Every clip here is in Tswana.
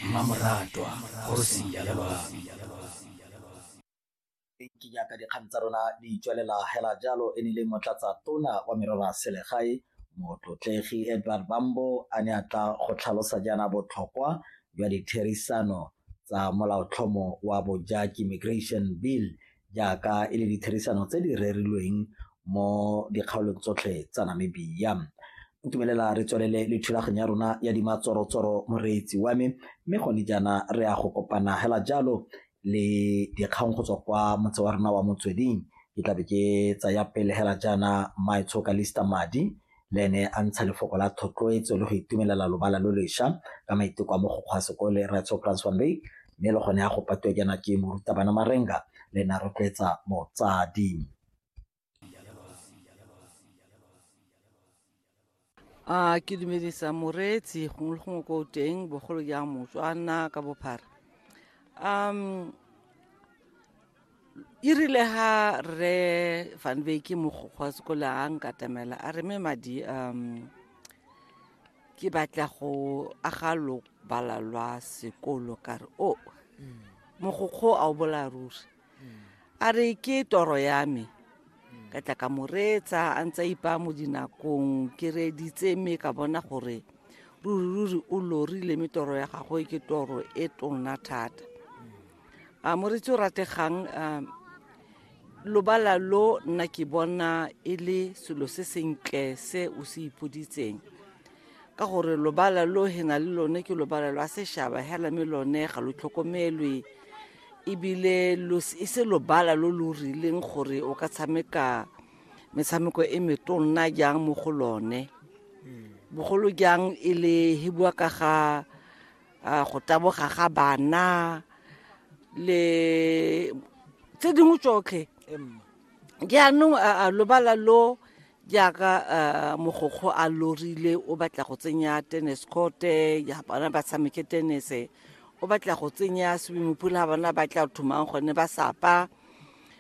mmamoratwa kgosi ya lelwami ke jaaka dikgang tsa rona di tswelela hela jalo e ne le motlatsa tona wa merero ya selegae motlotlegi edward bambo a ne a tla go tlhalosa jaana botlhokwa jwa ditherisano tsa molaotlhomo wa bojaki migration bill jaaka e le ditherisano tse di rerilweng mo dikgaolong tsotlhe tsa Namibia. Ntumelela re tswelele le thulaganyo ya rona ya dimatsorotsoro moreetsi wa me mme gone jaana re ya go kopana hela jalo le dikgang go tswa kwa motse wa rona wa motsweding ke tlabe ke tsaya pele hela jaana maetshoka lista madi le ene a ntsha lefoko la thotloetso le go itumelela lobala lo lesha ka maiteko a mogokgo a sekole Rraetsho Franz van Wyk mme le gone a go patiwa jaana ke morutabana Marenga le ene a rotloetsa motsadi a ke dumedisa moreetsi gongwe le gongwe ko teng bogolo jang motswana ka bophara um e rile ga rre van beke mogokgwa sekole a nkatamela a re me madi um ke batla go aga lobala lwa sekolo ka re o oh, mm. mogokgo a o bola ruri mm. a re ke toro ya me mm. ka tla ka moreetsa a ntse ipa mo dinakong ke reeditse mme ka bona gore ruri ruri o lorile mme toro ya gagwe ke toro e tona thata a moretsi o rategang um lobala lo nna ke bona e le selo se sentle se o se ipoditseng ka gore lobala lo he na le lone ke lobala lwa sešaba hela me lone ga lo tlhokomelwe ebile e se lobala lo lo rileng gore o ka tshameka metshameko e metonna jang mo go lone hmm. bogolo jang e le he bua ka ga a go taboga ga bana le tse dingwe tsotlhe jaanong a lobala lo jaaka mogokgo a lorile o batla go tsenya tennis courte ya bana ba tshameke tennis o batla go tsenya swimming pool ga bana ba tla thomang gone ba sapa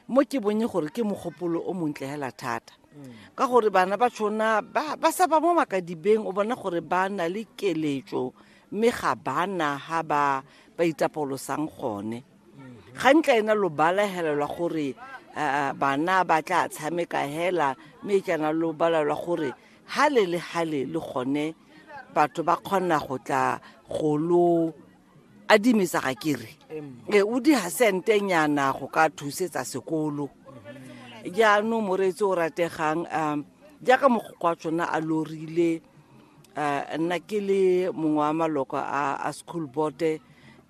mo ke bonye gore ke mogopolo o montle hela thata mm. ka gore bana ba tshona ba sapa mo makadibeng o bona gore ba na le keletso mme ga bana ha ba ba itapolosang gone ga ntla ena lo balahelelwa gore uh, bana ba tla tshameka hela mme e kana lo balelwa gore hale le hale le gone batho ba kgona go tla go lo adimisa ga kere e o di hasente nyana go ka thusetsa sekolo jaanong moreetsi o rategang um jaaka mogokwa tsona a lorile uh, nna ke le mongwe wa maloko a, a school board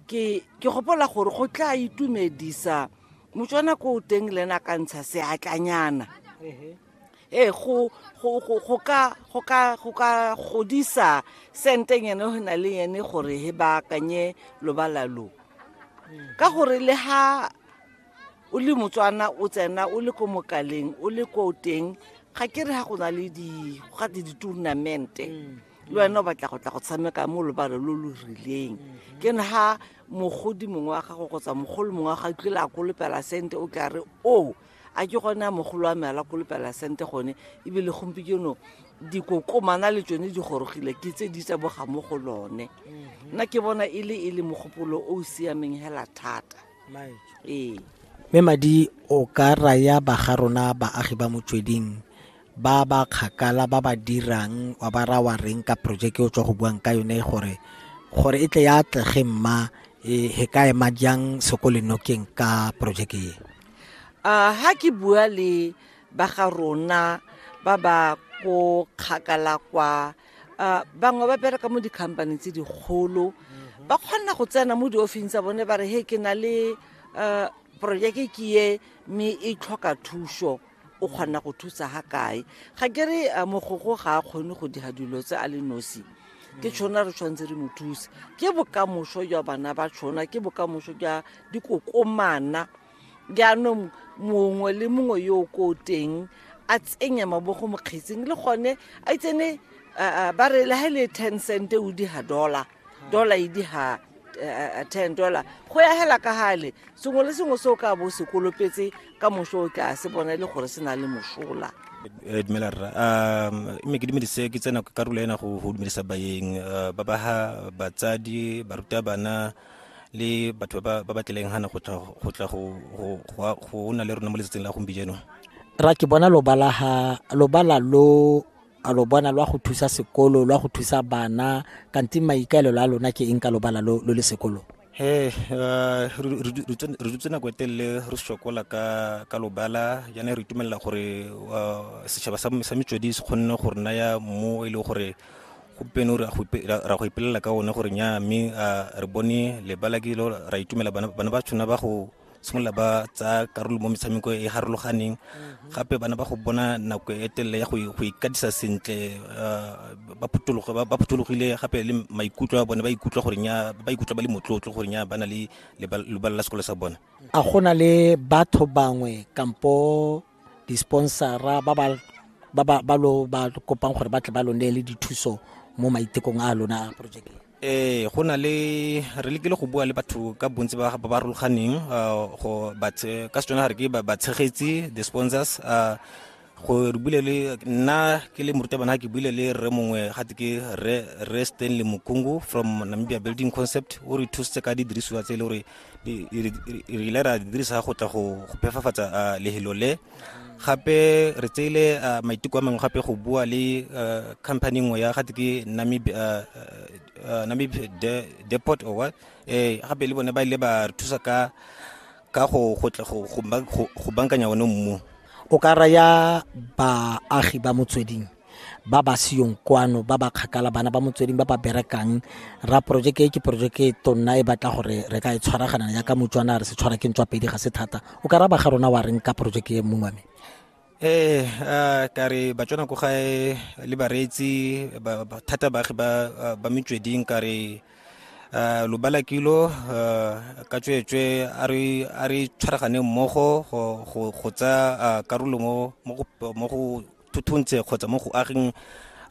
ke ke gopola gore go tla itumedisa motswana ko o teng le ena ka ntsha seatlanyana ee go ka godisa senteng ene go na le ene gore he ba akanye lobala lo ka gore le ha o le motswana o tsena o le ko mokaleng o le ko teng ga ke re ga go na le gate di-tournamente mm. le wena o batla go tla go tshameka mo lobalo lo lo rileng mm-hmm. ke ne ga mogodi mongwe wa gago kgotsa mogolo mongwe wa ga tlile a kolopela sente o tla re o a ke gone a mogolo wa me ala kolopela sente gone ebile gompieno dikokomana le tsone di gorogile ke tse di tsa boga mo go lone mm-hmm. nna ke bona e le e le mogopolo o o siameng hela thata ee mme madi o ka raya baga rona baagi ba motsweding ba ba kgakala ba ba dirang wa ba ra wa reng ka projeke o tswa go buang ka yone gore gore e tle ya atlege mma e he ka ema jang sekolenokeng ka projeke e uh, ha ke bua le baga rona ba ba ko kgakala kwa a bangwe ba bereka mo dikhampaneng tse dikgolo ba kgona go tsena mo diofising tsa bone ba re he ke na le um projeke ke ye mme e tlhoka thuso o kgona go thusa ga kae ga ke re uh, mogogo ga a kgone go dira dilo tse a le nosi ke tshona re tshwanetse re mo thuse ke bokamoso jwa bana ba tshona ke bokamoso jwa dikokomana jaanong mongwe le mongwe yo o ko teng a tsenye mabogo mokgetsing le gone a itsene ba re le ga e le ten cent o di ga dollar dollar e di ga eh, eh, ten dollar go ya hela ka gale sengwe le sengwe se o ka bo se kolopetse ka moso o tla se bona e le gore se na le mosola eh, dumela rra um mme ke dumedise ke tsena karolo ena go dumedisa bayeng ba ba ga batsadi barutabana le batho ba ba tlileng gana go tla go tla go go go na le rona mo letsatsing la gompieno ra ke bona lobala ha lobala lo a lo bona lwa go thusa sekolo lwa go thusa bana kanti maikaelelo a lona ke eng ka lobala lo lo le sekolo he uh, re dutse nako e telele re sokola ka ka lobala jaana re itumelela gore uh, setšhaba sa metswedi se kgonne go re naya mo e leng gore gompieno re a go ipelela ka one gore nya mme re bone lebala ke lo ra itumela bana ba tshwana ba go simolola ba tsaya karolo mo metshameko e harologaneng mm-hmm. gape bana ba go bona nako e telele ya go ikatisa sentle uh, ba phuthologile gape le maikutlo a bone ba ikutlwa gore nya ba ikutlwa ba le motlotlo gore nya ba na le lebala la sekolo sa bone a go na le batho bangwe kampo disponsora ba ba ba ba ba lo ba kopang gore ba tle ba lo neele dithuso mo maitekong a lona a project ee go na le re lekile go bua le batho ka bontsi ba ba farologaneng ah, go ba tshe- ka setswana ga re ke ba- batshegetsi the sponsors ah, go re buile le nna ke le morutabana ke buile le rre mongwe gate ke rre Rre stanley mokungu from namibia building concept o re thusitse ka didirisiwa tse e le gore re ile ra dirisa go tla go phefafatsa lehelo le gape re tseile maiteko a mangwe gape go bua le company nngwe ya gate ke namib deport or what ee gape le bone ba ile ba re thusa ka ka go go bankanya one mmu o ka raya baagi ba motsweding ba ba seyong kwano ba ba kgakala bana ba motsweding ba ba berekang ra porojeke e ke porojeke e tonna e batla gore re ka e tshwaragana ya ka motswana re se tshwara ke ntswa pedi ga se thata o ka raba ga rona wa reng ka porojeke e mongwe me ee eh, ka re batswana ko gae le bareetsi thata baagi ba metsweding ka re Eh, lobala kilo eh, ka tsweetswe a re tshwaragane mmogo go tsa eh, karolo mo go thuthuntse kgotsa mo go ageng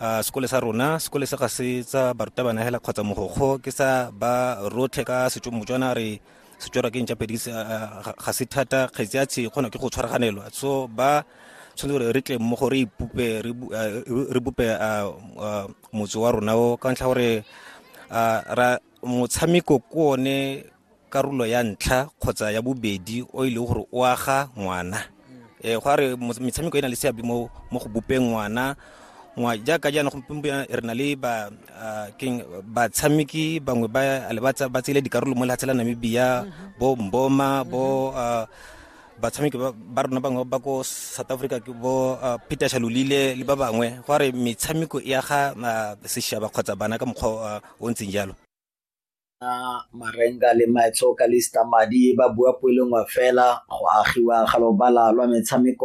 uh, sekole sa rona sekole se ga se tsa barutabana hela kgotsa mogokgo ke sa ba rotlhe ka setso motswana re setswara ke ntša pedi ga se thata kgetsi ya tshe kgona ke go tshwaraganelwa so ba tshwanetse gore re tle mo go re ipupe re bupe motse wa rona o ka ntlha gore motshameko ke one karolo ya ntlha kgotsa ya bobedi o e leng gore o aga ngwana um go a re metshameko e na le seabe mo go bopeng ngwana jaaka jaana gompieno re na le ba ah, keng batshameki bangwe ba ba tsele dikarolo mo lehatshe la namibia mhm. bo mboma bo mhm. ah, batshameki ba rona bangwe ba ko south africa ke bo ah, peter shalolile le ba bangwe go re metshameko e aga seshaba kgotsa bana ka mokgwa o ntseng jalo na marenga le maetso ka lista madi ba bua poelengwe fela go agiwa ga lobala lwa metshameko